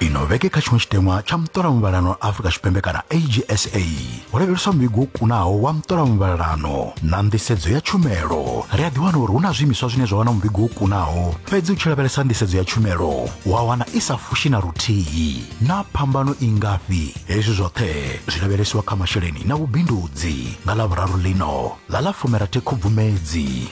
ino vhege kha tshiṅwe tshiteṅwa tsha muṱola muvhalano wa afurika tshipembe kana agsa ho lavheleswa muvhigo wo kunaho wa muṱola muvhalano na nḓisedzo ya tshumelo ri a ḓiwana uri hu na zwiimiswa zwine zwa wana muvhigo wo kunaho fhedzi u tshi lavhelesa nḓisedzo ya tshumelo wa wana i sa fushi na luthihi na phambano i ngafhi hezwi zwoṱhe zwi lavhelesiwa kha masheleni na vhubindudzi nga ḽa vhuraru ḽino ḽa ḽa fumirathi khubvumedzi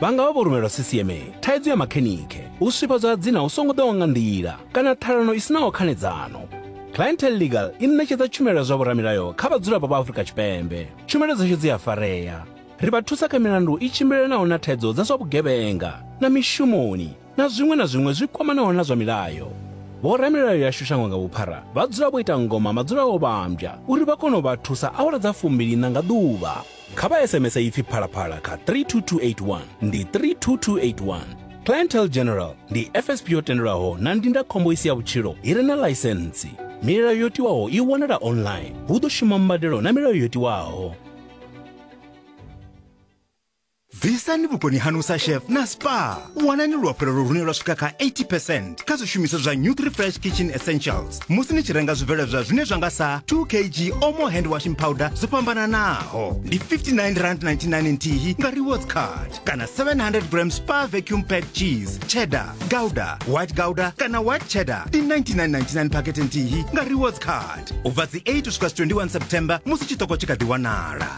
vha nga vha vho rumelwa ccma thaidzo ya makhenikhe u swifhadzwa ha dzina hu songo ḓaho nga nḓila kana ṱhalano i sinaho khanedzano clientel legal i ṋetshedza tshumelo ya zwa vhoramilayo kha vhadzulapo vha afurika tshipembe tshumelo dzashu dzi a farea ri vha thusa kha milandu i tshimbilelanaho na thaidzo dza zwa vhugevhenga na mishumoni na zwiṅwe na zwiṅwe zwi kwamanaho na zwa milayo. Vhoramilayo yashu shango nga vhuphara vha dzula vho ita ngoma madzula o vhambya uri vha kone u vha thusa awara dza fumbiliṋa nga ḓuvha. Kha vha SMS ipfi phalaphala kha 32281 ndi 32281. Clientele General ndi FSP yo tendelwaho na ndindakhombo i si ya vhutshilo i re na ḽaisentsi. Milayo yo tiwaho i wanala online. Hu ḓo shuma mbadelo na milayo yo tiwaho. bvisani vhukoni hanu sa chef na spa wanani luafhulelo lune lwa swika kha 80 percent kha zwishumiswa zwa new 3 fresh kitchen essentials musi ni tshi renga zwibveledzwa zwine zwa nga sa 2 kg omo hand washing powder zwo fhambananaho ndi 59 rand 99 nthihi nga rewards card kana 700 gram spa vacuum pad cheese cheddar gouda white gouda kana white cheddar ndi 99.99 pakete nthihi nga rewards card u bva dzi 8 u swika 21 september musi tshiṱoko tshi kha ḓi wanala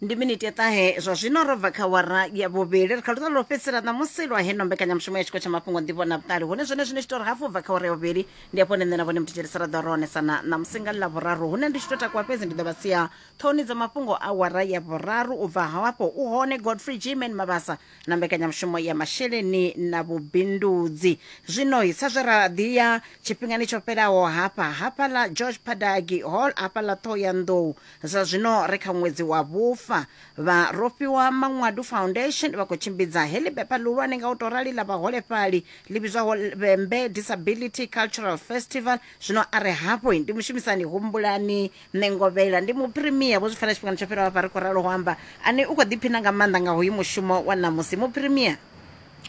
ndi miniti ya ṱahe zwa zwino ro bva kha wara ya vhuvhili ri kha luṱa lwo fhedzisela ṋamusi lwa heno mbekanyamushumo ya tshiko tsha mafhungo nḓivho na vhuṱali hune zwone zwine tshitori hafu bva kha wara ya vhuvhili ndi afho nṋe na vhone muthetsheli saraḓo ro onesana ṋamusi nga ḽa vhuraru hune ndi tshi to takuwa fhedzi ndi ḓo vha sia ṱhoni dza mafhungo a wara ya vhuraru u bva hafho u hone godfrey gman mabasa na mbekanyamushumo ya masheleni na vhubindudzi zwino sa zwe ra ḓi ya tshifhingani tsho fhelaho hafha hafha ḽa george padagi hall hafha ḽa ṱhoho ya nḓou Zwa zwino ri kha ṅwedzi wa vhufa. Vha Rofhiwa Maṅwadu Foundation vha khou tshimbidza heḽi bepa ḽihulwane nga u tou rali ḽa vhaholefhali ḽi vhidzwaho Vhembe Disability Cultural Festival. Zwino a re hafhu ndi mushumisani Humbulani Ṋengovhela. Ndi Muphirimia, vho zwi pfela tshifhingani tsho fhiraho hafha ri khou ralo ho amba, ane u khou ḓiphina nga maanḓa nga hoyu mushumo wa ṋamusi. Muphirimia.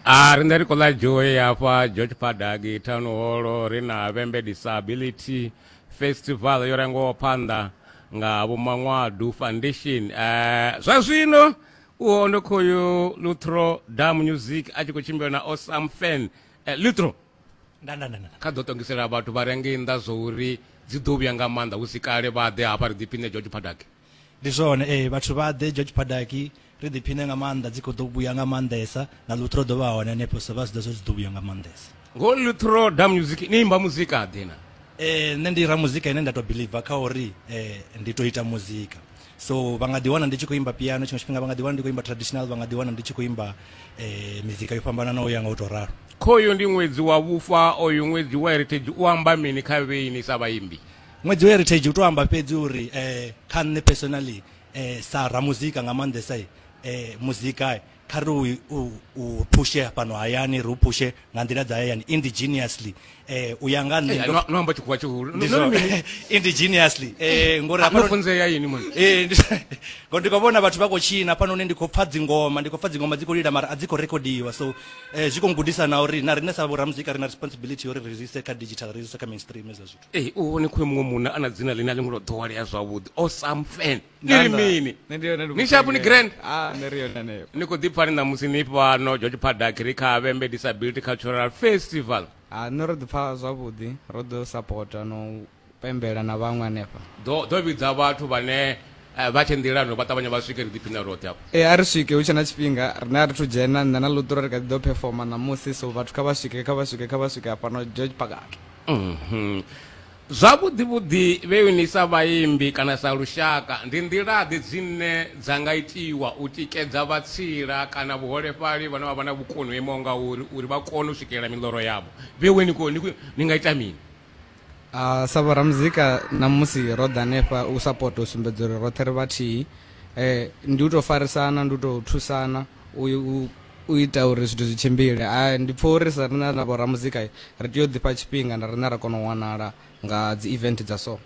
A ri nṋe ri khou ḽa joy hafha George Padagi Town Hall ri na Vhembe Disability Festival yo rangwaho phanḓa nga Vho Manwadu Foundation. Eh, zwa zwino uho ndo khoyu Luthro Dam Music a tshi khou tshimbila na Osam Fan. Eh, Luthro nda nda nda nda kha ḓo ṱongisela vhathu vha re ngei nnḓa zwo uri dzi ḓo vhuya nga maanḓa hu si kale vha ḓe hafha ri ḓiphiṋe George Paddock. ndi zwone ee vhathu vha ḓe george padaki ri ḓiphine nga maanḓa dzi khou ḓo vhuya nga maanḓesa na luthro ḓo vha hone hanefho so vha zwi ḓo zwo dzi ḓo vhuya nga maanḓesa ngo luthro da music ni imba muzika ḓe na eh nṋe ndi ra muzika ine nda to believer kha uri eh ndi to ita muzika so vha nga ḓi wana ndi tshi khou imba piano tshiṅwe tshifhinga vha nga ḓi wana ndi khou imba traditional vha nga ḓi wana ndi tshi khou imba eh mizika yo fhambananaho ya nga u to ralo khoyo ndi ṅwedzi wa vhufa oyu ṅwedzi wa heritage u amba mini kha vheini sa vhaimbi ṅwedzi wa heritage u to amba fhedzi uri um kha nṋe personally um sa ramuzika nga maanḓesa um muzika kha ri u phushe fhano hayani ri u phushe nga nḓila dza hayani indigenously um u ya nga nṋeindigenously um ngori ndi khou vhona vhathu vha khou tshina fhano hune ndi khou pfha dzingoma ndi khou pfha dzingoma dzi khou lila mara a dzi khou rekhodiwa so um zwi khou gudisa na uri na riṋe sa vhoramuzika ri na responsibility uri ri zwi ise kha digital ri zwi ise kha mainstream ezwo zwithu Ee u hone khoyo muṅwe munna a na dzina ḽine a ḽi ngo to ḓowelea zwavhuḓi o sam fan ni ri mini ni shapu ni grand ah, ni khou ḓipfa ni ṋamusi ni fhano george padak ri kha vhembe disability cultural festival ah, nṋe ro ḓipfa zwavhuḓi ro ḓo sapota no pembela na vhaṅwe hanefha ḓo vhidza vhathu vhane eh, vha tshe nḓilano vha ṱavhanya vha swike ri ḓiphina roṱhe afho ee eh, a ri swike hu tshe na tshifhinga rine a ri thu dzhena nṋe na luṱura ri kha ḓi ḓo phefoma ṋamusi so vhathu kha vha swike kha vha swike kha vha swike hafhano george pagak Mhm. Zwavhuḓi-vhuḓi vheu ni sa vhaimbi kana sa lushaka ndi nḓila-ḓe dzine dza nga itiwa u tikedza vhatsila kana vhuholefhali vhane vha vha na vhukoni ho imaho ngauri uri vha kone u swikelela miḽoro yavho? Vheue ni khou ni khou ni nga ita mini? A, sa vhoramuzika ṋamusi ro ḓa hanefha u sapota u sumbedza uri roṱhe ri vhathihi. Ndi u tou farisana, ndi u tou thusana. u u ita uri zwithu zwi tshimbile a ndi pfha uri sa rina na vhoramuzika ri tea u ḓifha tshifhinga na rina ra kona u wanala nga dzi event dza so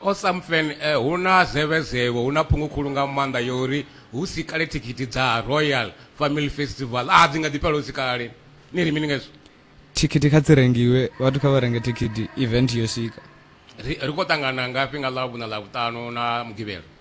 awesome fan eh, hu na zevezevho hu na phungu khulu nga maanḓa yo uri hu si kale thikhithi dza royal family festival a dzi nga ḓi fhela hu si kale ni ri mini ngezwo thikhithi kha dzi rengiwe vhathu kha vha renge thikhithi event yo swika ri ri khou ṱangana ngafhi nga ḽavhuna ḽavhuṱanu na mugivhela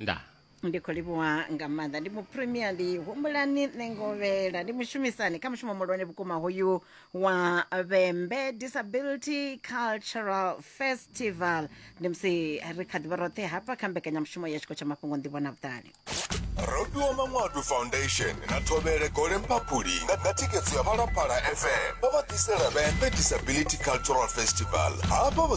nda ndi khou livhuwa nga maanḓa ndi mupremier ndi humbulani nṋe ngovhela ndi mushumisani kha mushumo muhulwane vhukuma hoyu wa vhembe disability cultural festival ndi musi ri kha ḓivha roṱhe hafha kha mbekanyamushumo ya tshiko tsha mafhungo nḓivho na vhuṱali robiwa manwadu foundation na thovhele gole mphaphuli nga nga thikhedzo ya phalaphala fm vho vha ḓisela vhembe disability cultural festival hafha vho